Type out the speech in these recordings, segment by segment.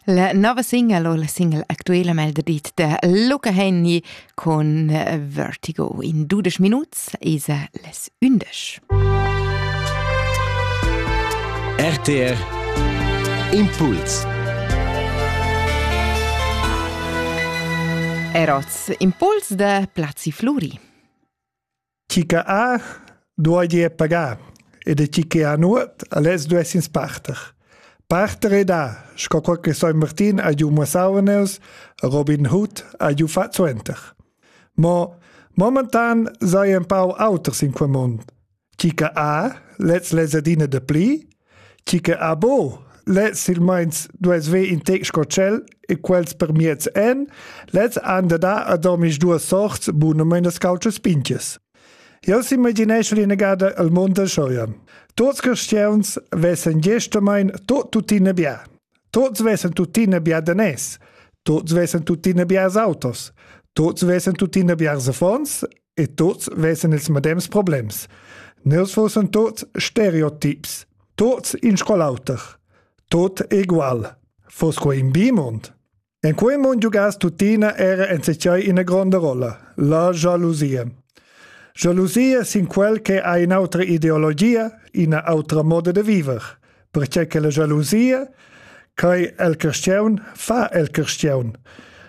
La nova single o la single actuela mel de dit de Luca Henny con eh, Vertigo in 12 minuts esa les 11. RTR Impuls Eroz Impuls de Plazzi Fluri. Chi che ha, duoi ir pagar, ed chi che ha nuot, aless duess ins parter. Parter e da, sco quel che San Martin ha giù mussauneus, Robin Hood ha giù fat suenter. Mo momentan sei ein pau auters in quel mund. Chi che ha, lez lesadina de pli, Chi che ha bo, le silmeins duess ver in tec sco tschel e quels per miez en, lez han da dar ad omis duas sorts bunamein das cautschas pinches. Jeu s'imagineschel inagada el mond del Scheuern. Tuts cristians vessen gestamein tot tuttina bia. Tuts vessen tuttina bia danès. Tuts vessen tuttina biars autos. Tuts vessen tuttina biars affons e tuts vessen ils medems problems. Nels fussen tuts stereotips, tuts in scolauter, tut egual. Fos quo in bimund? En quei mund jugas tutina era en secei ina gronda rolla, la jalusia. Jalusia sin quel che ha in autra ideologia, ina autra moda de viver. perche che la gelosia quai el cristiaun fa el cristiaun.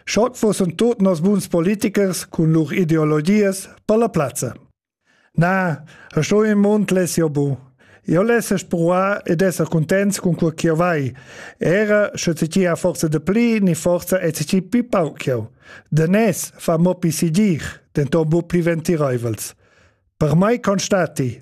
Schock fossen tot nos buns politikers cun lur ideologias per la plazza. Na, sto in mund les io bu. Io lesse spruar ed esser contents con quel ch'io vai. Era sche ti ti a forza de pli ni forza e ti ti pi pau ch'io. De nes fa mo pi si dir, den ton bu pli ventireivels. Per mai constati,